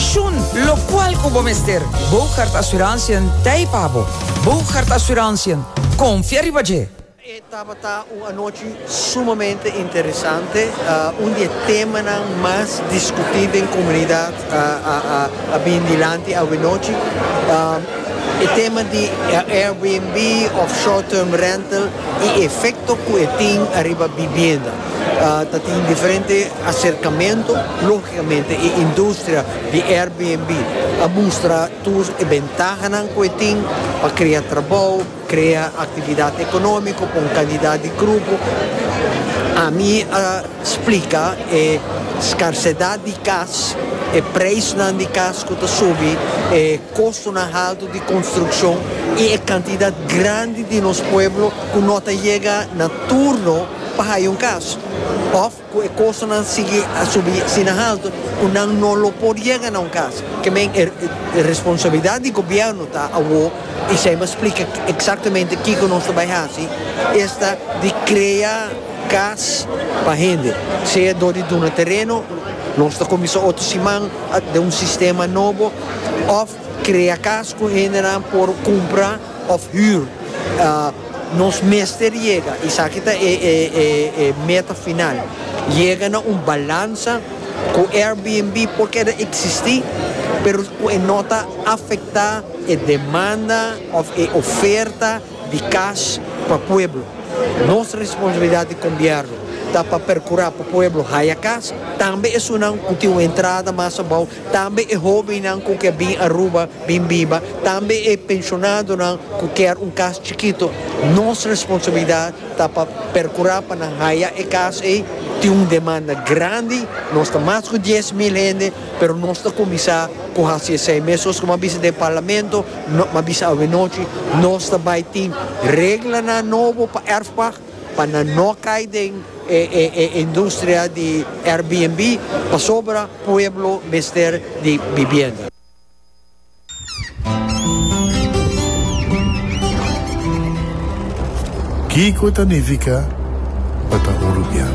Shun lokual ku bo mester. Bougaard Assurantiën t'ei pa bo. Bougaard Assurantiën, konfia riba dje! E tabata un anochi sumamente interesante, un di e temanan mas diskutí den komunidat a bini dilanti awenochi. E tema di Airbnb òf short term rental i e efekto ku e tin ariba bibienda. Ta tin diferente aserkamentu, lógikamente e industria di Airbnb a mustra tur e bentahanan ku e tin pa krea trabou, krea aktividat ekonómiko pa un kantidat di grupo. Ami a splika e skarsedat di kas, e preisnan di kas ku ta subi, e kostonan haltu di konstrukshon i e kantidat grandi di nos pueblo ku no ta yega na turno. pa haya un kas òf ku e kostonan sigui a subi asina haltu ku nan no lo por yega na un kas. Ke men e responsabilidat di gobièrnu ta awo, i esei mi a splika eksaktamente kiko nos ta bai hasi, esta di krea kas pa hende, sea dor di duna tereno, nos ta kuminsá otro siman den un sistema nobo, òf. Krea kas ku hendenan por kumpra òf hür. Nos mester yega, esaki ta e meta final, yega na un balansa ku Airbnb por keda eksistí, pero ku e no ta afektá e demanda òf e oferta di kas pa pueblo. Nos responsabilidat di Gobièrnu ta pa perkurá pa pueblo haya kas, tambe esunnan ku tin un entrada mas abou Tambe e hóbennan ku ke bin Aruba bin biba, tambe e penshonadonan ku kier un kas chikito, nos responsabilidat ta pa perkurá pa nan haya e kas ei. Tin un demanda grandi, nos ta mas ku dies mil hende, pero nos ta kuminsá ku hasi esei mes. Sos kuma a bisa den parlamento, kuma a bisa awe nochi, nos ta bai tin reglanan nobo pa Erfpach. Pa nan no cay den e e industria di Airbnb pasobra pueblo mester di bibienda. Kico ta nifica pa ta un rubian?